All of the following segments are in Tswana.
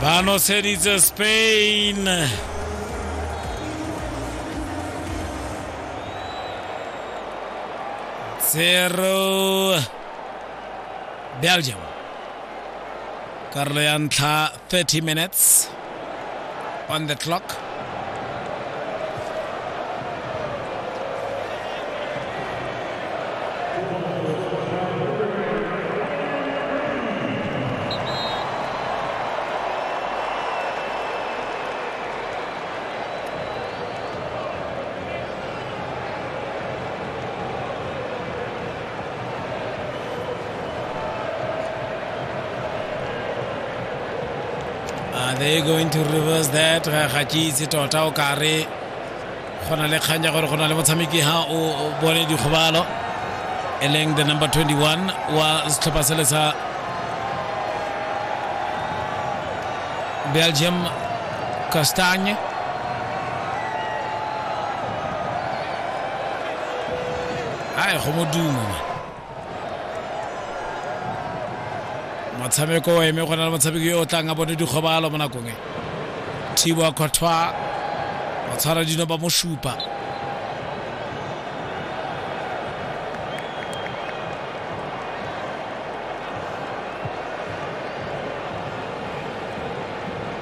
ba noseditse spain zero belgium karolo ya ntlha 30 minutes On the clock. Are they going to reverse that? Ga ga ke itse tota o ka re go na le kgang ya gore go na le motshameki ha o o bone dikgobalo e leng the number 21 wa setlhopha sele sa Belgium Castagne ae go modumo motshameko o eme go na le motshameki yo o tlang a bone dikgobalo mo nakong e thibo a kgothwa ba tshwara dino ba mo supa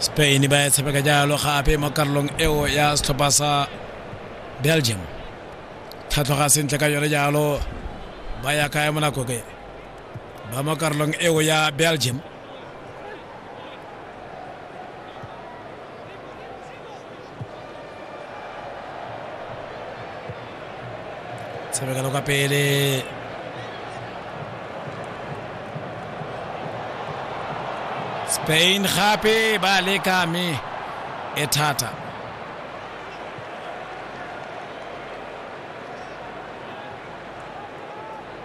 spain ba ya tshameka jalo gape mo karolong eo ya setlhopha sa belgium tlhatlhoga sentle ka yone jalo ba ya kaya mo nako ke ba mo karolong eo ya belgium tshamekelo ka pele spain gape ba leka mme e thata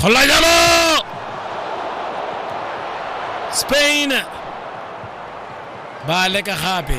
go la jalo spain ba leka gape